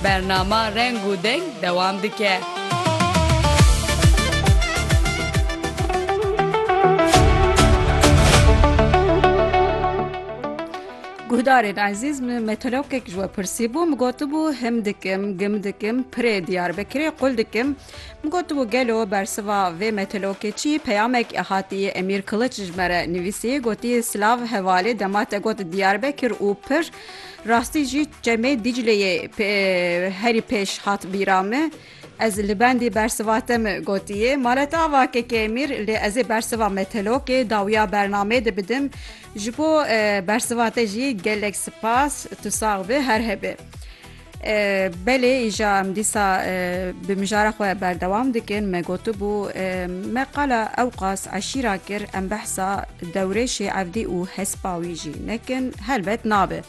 Bernama Reng û Deng dewam dike. Guhdarên ezîz min meteorologek ji we pirsîbû min gotibû him dikim gim dikim pirê Diyarbekirê qul dikim min gotibû gelo bersiva vê meteorologê çî peyamek hatiye Emîr Kiliç ji me re nivîsî gotiye silav hevalê dema te got Diyarbekir û pir Rastî jî çemê Dîcleyê herî pêş hat bîra me. Ez li bendî bersiva te min gotiye male te ava keke emîr lê ez ê bersiva me telokê dawiya bernamê de bidim ji bo bersiva te jî gelek sipas tu sax bi her hebê. Belê îja em dîsa bi mijara xwe berdewam dikin me gotibû me qala ewqas eşîra kir em behsa dewrê şêevdî û hespa wî jî nekin helbet nabe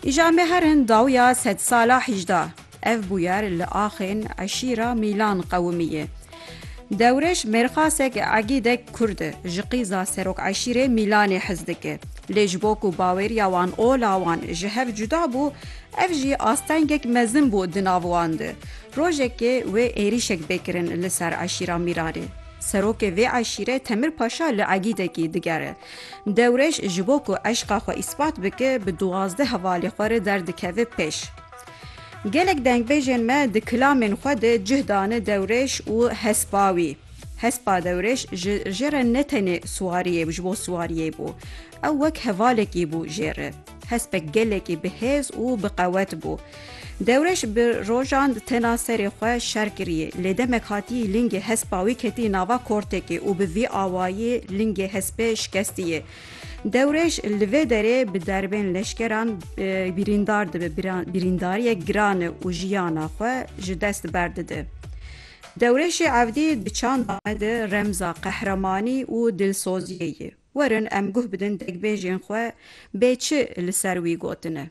îja me her hin dawiya sedsala hîjda ev bûyer li axên eşîra mîlan qewimî ye. Dewrêş mêrxasek egîdek kurd e. Ji qîza serokeşîrê Mîlanê hez dike. Lê ji bo ku bawêriya wan ola wan ji hev cuda bû, ev jî astengek mezin bû di nav wan de. Rojekê wê êrîşek bê kirin li ser eşîra Mîlanê. Serokê vê eşîrê Temir Paşa li egîdekî digere. Dewrêş ji bo ku eşqa xwe îspat bike bi duwazdeh hevalê xwe re derdikeve pêş. Gelek dengbêjên me di kilamên xwe de cih dane dewrêş û hespa wî. Hespa dewrêş ji jê re ne tenê siwariyê ji bo siwariyê bû. Ew wek hevalekî bû jê re. Hespek gelekî bi hêz û bi qewet bû. Dewrêş bi rojan tena serê xwe şer kiriyê. Lê demek hatiyî lingê hespa wî ketiyî nava kortekê û bi vî awayî lingê hespê şikestiyê. Dewrêj li vê derê bi derbên leşkeran birîndar dibe, birîndariyek giran e û jiyana xwe ji dest berdide. Dewrêşê Evdî di çanda me de remza qehremanî û dilsoziyê ye. Werin em guh bidin degbêjên xwe bê çi li ser wî gotine.